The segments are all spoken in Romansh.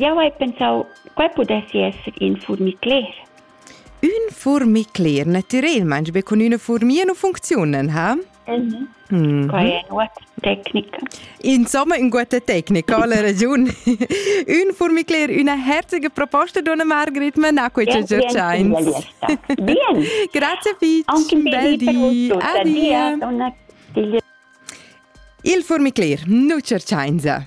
Jau hai pensau quei pudessi esser in furmicler. Ün furmicler natürelmaing be cun üna furmia nu funcziunan, ha? Mhm. Mm Quai è ua tecnica. Insomma, ün guata tecnica, ha la ragiun. ün furmicler, üna herzige proposta, donna Margrit, ma na quei che giatschains. Bien. Grazie fitch. Anche bel di. Adia. Il furmicler, nu cerchainsa.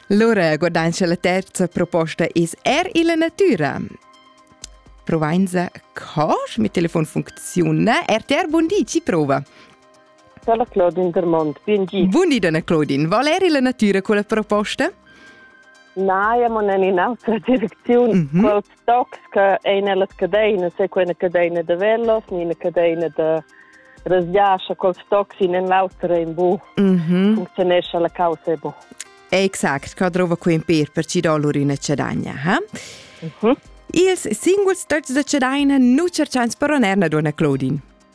Lura guadanscha la terza proposta es er illa natüra. Provainsa cos, mi telefon funcziuna. RTR, bun di, ci prova. Dalla Claudine Dermont, bien gi. Bun di, donna Claudine. Val er illa natüra con la proposta? Na, io non è in altra direczione. Mm -hmm. Quals tocs che ein ella cadeina, se quella cadeina da velos, ni ina cadeina da rasgiascha cons tocs in en l'auter in bu. Mm -hmm. Funzionescha la causa e bu. Exact, ca drova cu in per per ci dolur in cedagna, ha? Mm -hmm. Ils singuls tocs da cedaina nu cercans per oner na dona Claudine.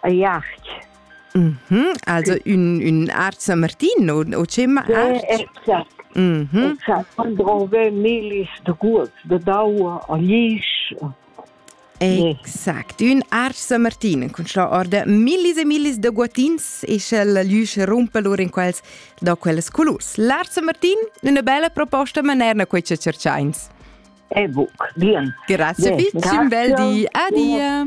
Aiarch. Mm -hmm. Also un, un art San Martin o, o ce ma art? Exact. Mm -hmm. Exact. Man drove milis de gut, de daua a lisch. Exact. Un art San Martin con la orda millis e millis de guatins e sch'el liusce rumpe lur in quels da quels colurs. L'art San Martin, una bella proposta manerna quei che cerciains. E book, bien. Grazie, bien. Bel di. Adia.